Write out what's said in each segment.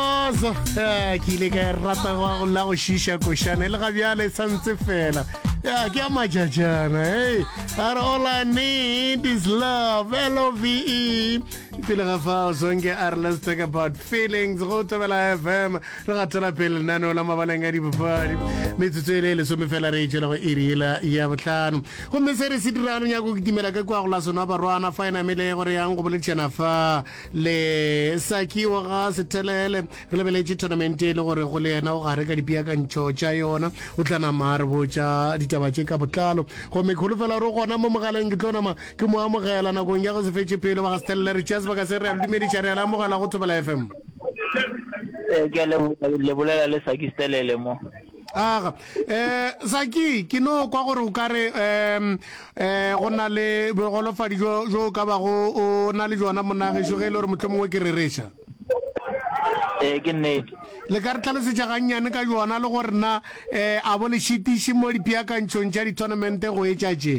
Ozo, ya, ke ile ka e rata go go la go šiša košana e le ga bjale e santse fela ya ke a majajana hey a re all i need is love love pele ga fao zonke a re let's talk about feelings go tobela fm re gatela pele lenaneo la mabaleng a dipapadi metsotso e le e lesome fela re e tšwela go iriela ya botlhano gomme se re se dirano nyako kitimela ka kwa go la sona barwana fa e namele gore yang go boletšana fa le sakiwa ga sethelele re lebeletše tournament e le gore go le yena o gare ka dipeakantšho tša yona o tla nama a re botša ditaba tše ka botlalo gomme kgolo fela ro gona mo mogaleng ke tlo nama ke mo amogela nakong ya go se fetše pelo ba ga sethelele re tšea sebaka se re a le dumediša re a le amogela go thobela fm eh, ke a lebolela le saki stelele mo Aga. Eh, Zaki, ke no kwa gore o ka re, um, eh, go na le bogolofadi jo, jo ka ba go, o na le jona monagešo ge e le gore motlho mongwe ke rereša. Eh, ke nnete. Le ka re tlhalosetša gannyane ka jona le gore na, eh, a bo le šitiši mo dipeakantšhong tša di-tournamente go etša tše?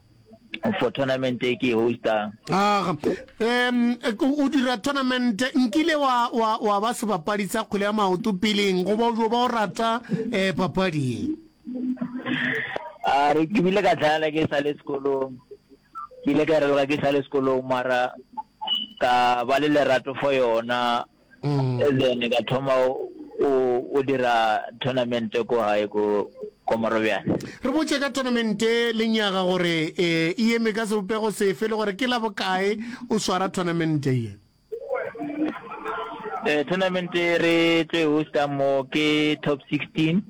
for tournament e ke e hostang aga um o dira tournament nkile wa wa wa ba sebapadi sa kgwele ya maoto peleng go ba o ba o rata um papading a re ke bile ka tlhayala ke sa le sekolong ke ile ka reloga ke sa le sekolong mara ka ba le lerato for yona mm. and then ka thoma o dira tournament ko gae ko ko morobjane re botse ka tournament le nyaga gore e eme ka sebopego sefe le gore ke la bokae o swara tournament ye eh tournament re tlo e hosta mo ke top 16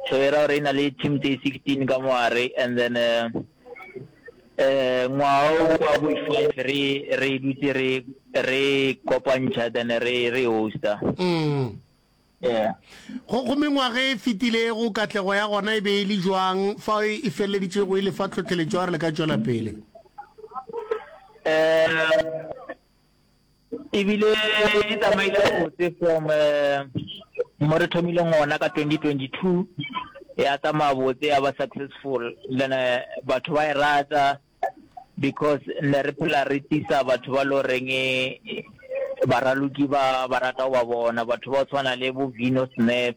so era re na le team tse 16 ka moare and then uh, Ngwaga wo wa bo five re re dutse re re kopantšha then re re hosta. Mm. Yeah. Go go mengwaga e fetilego katlego ya gona e be e le jwang fa e, e feleleditšego e le fa tlhotlheletšo ya gore le ka tšwela pele? Eh ebile di tsamaile botse from um mo re thomileng ona ka 2022 ya tsamaya botse ya ba successful then eh, batho ba e rata because ne re phela re tisa batho ba lo reng eh, baraloki ba ba rata go ba bona batho ba tshwana le bo vino snap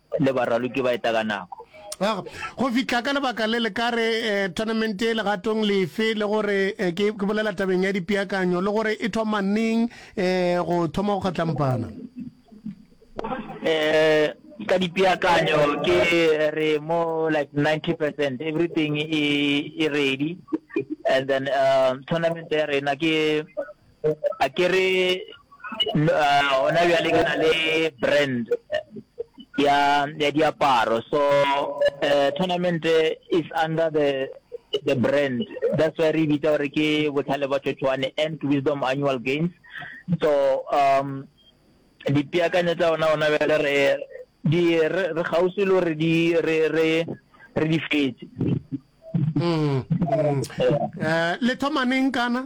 le baraloki ba eta ka nako. Go fihla ka lebaka le le ka re tournament e legatong lefe le gore ke ke bolela tabeng ya dipeakanyo le gore e thoma neng go thoma go kgatlampana. Eh ka dipeakanyo ke re mo like 90% everything e e ready and then um tournament ya rena ke a ke re gona bjale ke na le brand ya ya diaparo so uh, tournament is under the the brand that's why re bitsa gore ke botlhale ba tšotšwane and wisdom annual games so um dipeakanyo tsa ona ona bjale re di re gausi le gore di re re re di fetse mm, mm. Eh, le thomaneng kana